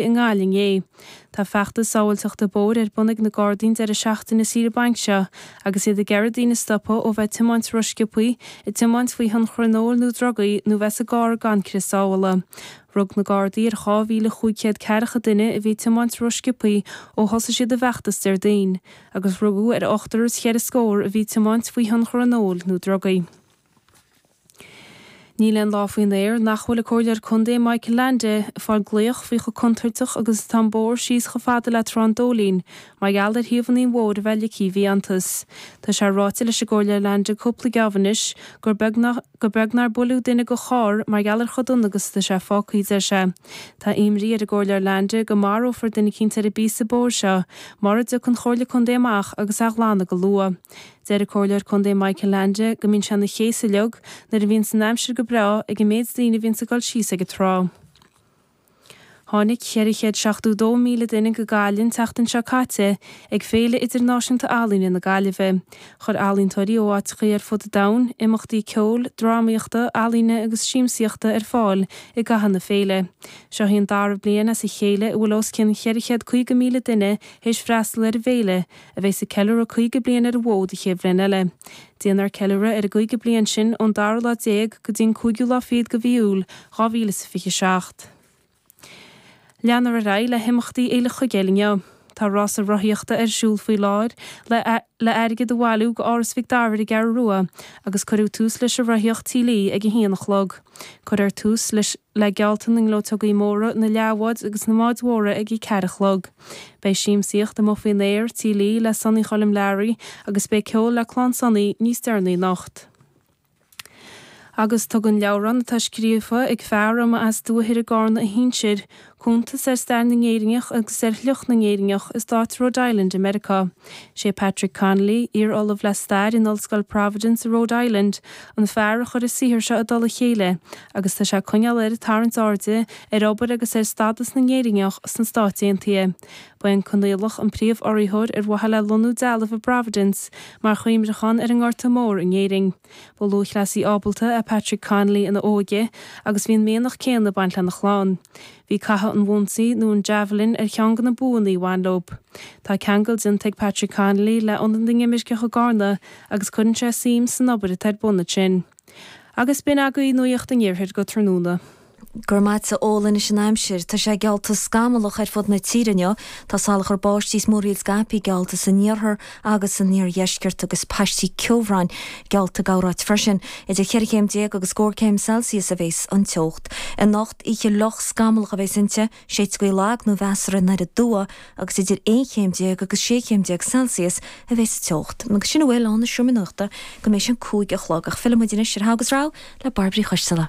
i nGaillimh é. Tá feachtas sábháilteachta bóthair ar bun ag na Gardaí an deireadh seachtaine saoire bainc seo agus iad ag iarraidh daoine stopadh ó bheith ag tiomáint rósciobtha, ag tiomáint faoi thionchar an óil nó drugaí nó bheith sa gcarr gan crios sábhála. Rug na Gardaí ar 2,500 ceathracha duine a bhí ag tiomáint rósciobtha ó thosaigh siad a bhfeachtas Déardaoin agus rugadh ar ochtar is cheithre scór a bhí ag tiomáint faoi thionchar an óil nó drugaí. Níl aon lá faoin aer nach bhfuil an Comhairleoir Contae Michael Leainde ag fáil glaoch faoi chomh contúirteach agus atá an bóthar síos chomh fada le Trá an Dóilín mar gheall ar thaobhanna an bhóthair a bheith ligthe i bhfiántas. Tá sé ráite leis an gComhairleoir Leainde cúpla geábh anois gur beag nár buaileadh duine dhá charr mar gheall ar chomh dona agus atá sé fágtha, a deir sé. Tá imní ar an gComhairleoir Leainde go marófar duine eicínt ar an bpíosa bóthair seo mura dtiocfaidh an Chomhairle Contae amach agus é a ghlanadh go luath. Deir an Comhairleoir Contae Michael Leainde go mbíonn sé ina chéasadh uilig nuair a bhíonns an aimsir go breá ag an méid daoine a bhíonns ag dul síos ag an trá. Tháinig 472,000 duine go Gaillimh an tseachtain seo caite ag Féile Idirnáisiúnta Ealaíne na Gaillimhe. Chuir ealaíontóirí ó áiteachaí ar fud an domhain imeachtaí ceoil, drámaíochta, ealaíne agus siamsaíochta ar fáil i gcaitheamh na féile. Seo í an dara bliain as a chéile a bhfuil os cionn 450,000 duine th'éis freastal ar an bhféile, a bheas ag ceiliúradh 50 bliain ar an bhfód an chéad bhliain eile. Déanfar ceiliúradh ar an gcaoga bliain sin ón dara lá déag go dtí an cúigiú lá fichead de mhí Iúil 2027. Leanfar ar aghaidh le himeachtaí Fhéile Chuigéal inniu. Tá rása rothaíochta ar siúl faoi láthair le airgead a bhailiú do Áras Mhic Dara ar an gCeathrú Rua agus cuireadh tús leis an rothaíocht Tí Lee ag a haon a chlog. Cuirfear tús le geallta na ngleoteogaí móra, na leathbhád agus na mbád móra ag a ceathar a chlog. Beidh siamsaíocht amuigh faoin aer, Tí Lee le Sonny Choilm Learaí agus beidh ceol le Clann Sonny níos deireanaí anocht. Agus tugann leabhrán atá scríofa ag fear a mba as Dumhaigh Ithir i gCarna a shinsir cuntas ar stair na nÉireannach agus ar shliocht na nÉireannach i Stát Rhode Island i Meiriceá. Sé Patrick Conley, iar Ollamh le Stair in Ollscoil Providence i Rhode Island, an fear a chuir an saothar seo i dtoll a chéile, agus tá sé ag coinneáil air ag tarraingt airde ar obair agus ar stádas na nÉireannach sna Stáit Aontaithe. Ba é an Conghaileach an príomh-urraitheoir ar mhaithe le lonnú dealbh i bProvidence mar chuimhneachán ar an nGorta Mór in Éirinn. Ba lúthchleasaí ábalta é Patrick Conley ina óige agus bhí an mianach céanna ag baint lena chlann. Bhí caitheamh an bhonsaigh, nó an javelin, ar cheann de na buanna a bhain leob. Tá ceangal déanta ag Patrick Conley le Ionad na nImirceach i gCarna agus cuireann sé suim san obair atá ar bun ansin. Agus b'in agaibh nuaíocht an Iarthair go tráthnóna. Go raibh maith agatsa a Chóil anois an aimsir. Tá sé geallta scamallach ar fud na tíre inniu. Tá salachar báistí is múraíl scaipthe geallta san iarthar agus san iardheisceart agus paistí ceobhráin geallta corráit freisin. Idir cheithre chéim déag agus scór céim Celsius a bhéas an teocht. Anocht oíche fhliuch scamallach a bhéas inti. Shéid gaoth lag nó mheasartha aniar aduaidh agus idir aon chéim déag agus sé chéim déag Celsius a bheas an teocht. Agus sin a bhfuil ann ón seomra nuachta go mbeidh sé a cúig a chlog ach fillfimid anois ar Thall is Abhus le Bairbre Uí Choisteala.